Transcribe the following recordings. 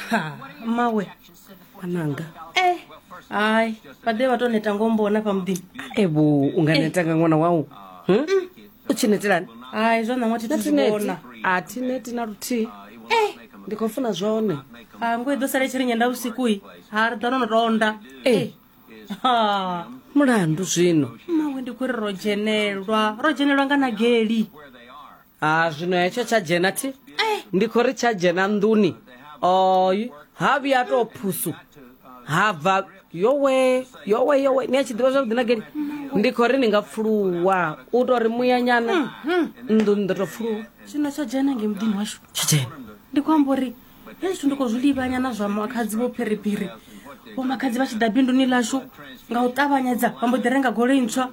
ha mawe ananga eh hayi vhaḓe vha tou neta ngombona pa muḓini evo u nga netanga ṅwana wau Hm? u tshi netelani hayi zwa ṋaṅwa thi thu zwi natineti vhona a thi neti na luthihi Eh. ndi khou funa zwone ha ngo i ḓo sala i tshi ri nyenda vhusiku-i ha ri ḓo no no tonda e ha mulandu zwino mawe ndi kuri ro dzhenelwa ro dzhenelwa nga na geli ha zwino hetsho tsha dzhena thi ndi khou ri tsha dzhena nḓuni oy ha vhuya tou phusu ha bva yowe yowe yowe ni a tshi ḓivha zwavhuḓi na geli ndi khou ri ni nga pfuluwa u tou ri muyanyana nḓuni ndo tou pfuluwa zwino tsho dzhena nge muḓini washu tsha dzhena ndi khou amba uri hezwi ndi khou zwi livhanya na zwa makhadzi vho phiriphiri vho makhadzi vha tshi ḓa binduni ḽashu nga u ṱavhanyedza vha mbo ḓi renga goloi ntswa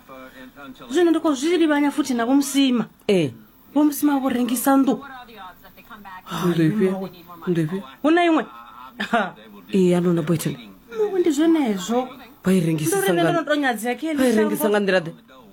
zwino ndi khou zwi livhanya futhi na vhomusima ee eh. vhomusima vho rengisa nnḓu hu na iṅwe ee a lona boyton mawe ndi zwenezwo vha i rengisisa nga nḓila ḓe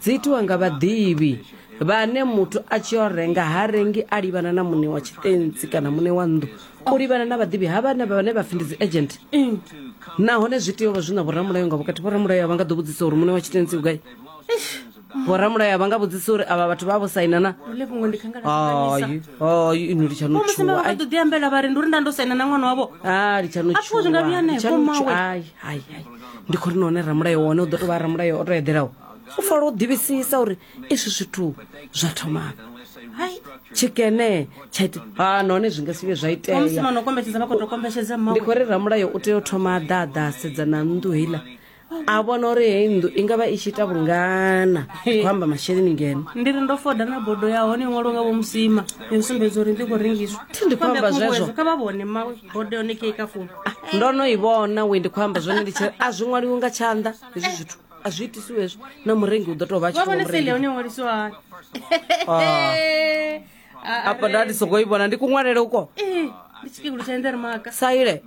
Dzi itiwa nga vhaḓivhi vhane muthu a tshi o renga ha rengi a livhana na muṋe wa tshitentsi kana muṋe wa nnḓu u livhana na vhaḓivhi ha vhane vhane vha pfi ndi dzi agent nahone zwi tea u vha zwi na vhoramulayo nga vhukati vhoramulayo a vha nga ḓo vhudzisa uri muṋe wa tshitentsi u gai vhoramulayo a vha nga vhudzisa uri avha vhathu vha vho saina na hayi ino litshano tshuwa ḓo ḓi ambela vha ri ndi uri nda ndo saina na ṅwana wavho a litshano tshuwa ndi khori nahone ramulayo wone u ḓo to vha ramulayo o to eḓelaho u fola u ḓivhisisa uri izwi zwithu zwa thomafhi hai tshikene tsha ita ha nahone zwi nga si vhe zwa iteamusimaokombetshedzavhakotokombetshedzamndi khou ri ramulayo u tea u thoma a ḓaḓa a sedza na nnḓu heiḽa a vhona uri heyi nnḓu i ngavha i tshi ita vhungana khou amba masheleni ngeno ndi ri ndo foda na bodo ya hone iṅwalo nga vho musima yo sumbedza uri ndi khou rengiswa thi ndi khou amba zwezwo kha vha vhone ma bodo yone kei ka fumi ah, ndo no i vhona we ndi khou amba zwone ndi tshi a zwi ṅwaliwi nga tshanḓa hezwi zwithu a zwi itisiwe hezwo na murengi u ḓo tou vha wa vhone sele hone ṅwalisiwa hani Ah. apa nda ndi songo i vhona ndi kuṅwalele uko Eh, ndi tshikegulu tsha endere maka saile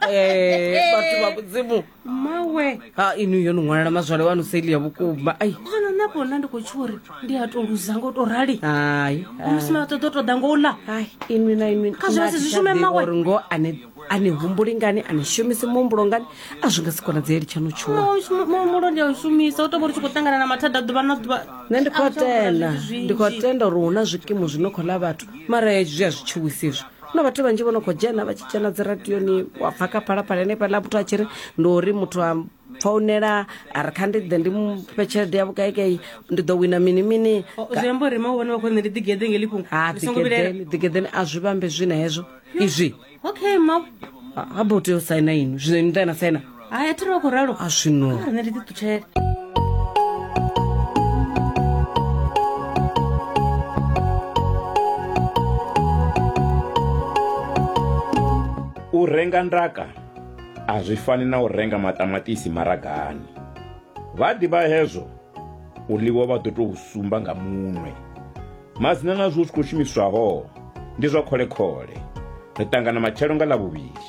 Eh, vhathu vha mudzimu mawe ha inu yo ni ṅwalela mazwale wanu saile ya vhukuma ai ndi zwino nṋe afho nda ndi khou tsho uri ndi a tou luza ngo tou rali hai musi maṱoḓo ṱoḓa ngo u ḽa hai inwi na inwi Kha zwi vha si zwi shume mmawe. uri ngo ane a ni humbuli ngani a ni shumisi muhumbulo ngani a zwi nga si konadzeeli tsha no tshuwa Oh, shuma- muhumbulo ndi a u shumisa u tou vha ri tshi khou ṱangana na mathada ḓuvha na ḓuvha nṋe ndi khou A zwo vhona tenda zwithu zwinzhi. ndi khou tenda uri hu na zwikimu zwi no khou ḽa vhathu mara hezwi zwi a zwi tshuwisi izwi na vhathu vhanzhi vho no khou dzhena vha tshi dzhena dzi radioni wa pfa kha phalaphala henefhaḽa muthu a tshi ri ndi uri muthu a founela a ri kha ndi ḓe ndi mufhe tshelede ya vhukaikai ndi ḓo wina mini mini zwiamba uri ma vhone vha khou nṋe ndi ḓigede ngeli fhungo ha ḓigedeni ḓigedeni a zwi vhambe zwi na hezwo izwi okay ma ha bo tea u saina inwi zwino inwi ḓa na saina hai a thi ri vha khou ralo a zwino nṋe ndi ḓiṱutshele u renga ndaka A zwi fani na u renga maṱamaṱisi maragani. Vha ḓivha hezwo u ḽiwa vha ḓo tou sumba nga munwe. Madzina na zwo zwi khou shumiswaho ndi zwa khole-khole. Ri ṱangana matshelo nga Ḽavhuvhili.